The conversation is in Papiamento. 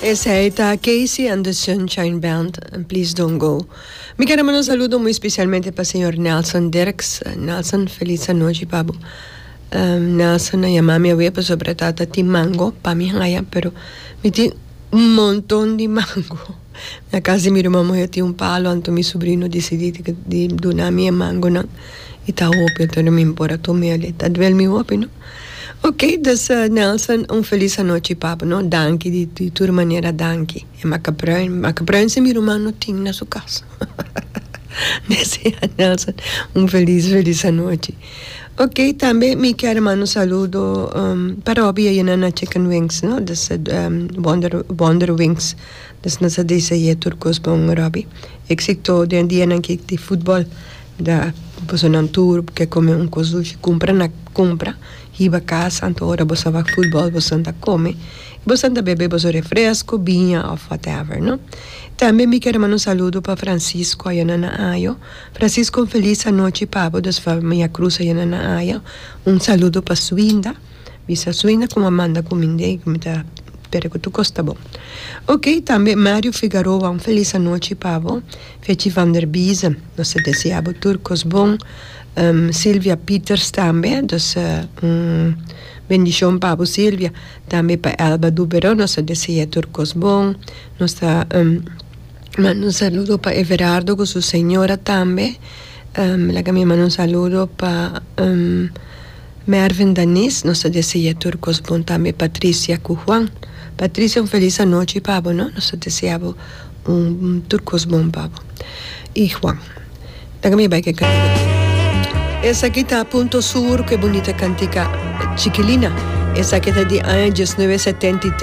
Esei ta Casey and the Sunshine Band en Please Don't Go. Mi kere manda un saludo muy especialmente pa señor Nelson Dirks. Nelson, feliz anochi pa bo. Um, Nelson a yama mi awe pasobra ta ta tin mango pa mi haya, pero mi tin un monton di mango. Mi a casi miro mamá yo tin un palo anto mi sobrino decidi di di duna mi e mangonan y ta hopi, entonces mi por a tome ale. Ta duel mi hopi, no. Ok dus Nelson un felis anochi papu no danki di di tur manera danki e makapruin makapruin si mi ruman no tin na su kas desea Nelson un felis felis anochi ok tambe mi kier manda un saludo pa Robie aye nan na chicken wings no dus wonder wonder wings dus nan sa desea tur kos bon Robie exito den dianan ki di futbol Da bosonan tur ke kome un kos dushi kumpra na kumpra hiba kas anto ora boso a wak futbòl boson ta kome i boson ta bebe boso refresko biña òf whatever no tambe mi kere manda un saludo pa Francisco aya na na ayo Francisco un felis anochi pa bo dus famia Cruz aya na na ayo un saludo pa Suinda bisa Suinda kuma manda ku mi ndei ku mi ta pere ku tur kos ta bon oke tambe Mario Figaroa un felis anochi pa bo. Fetji van der Biesen, nos ta desea bo tur kos bon. Silvia Pieters tambe, dus un bendishon pa bo Silvia. Tambe pa Elba Dubero nos ta desea tur kos bon. Nos ta manda un saludo pa Everardo ku su señora tambe. Laga mi manda un saludo pa. Mervin Danis nos ta desea tur cos bon tambe Patricia cu Juan Patricia un feliz anochi pa bo no nos ta desea bo un tur cos bon pa bo y Juan laga mi bay ke cantica tin esaki ta Punto Sur cu e bunita cantica Chikilina esaki ta di aña dies nuebe setenta i.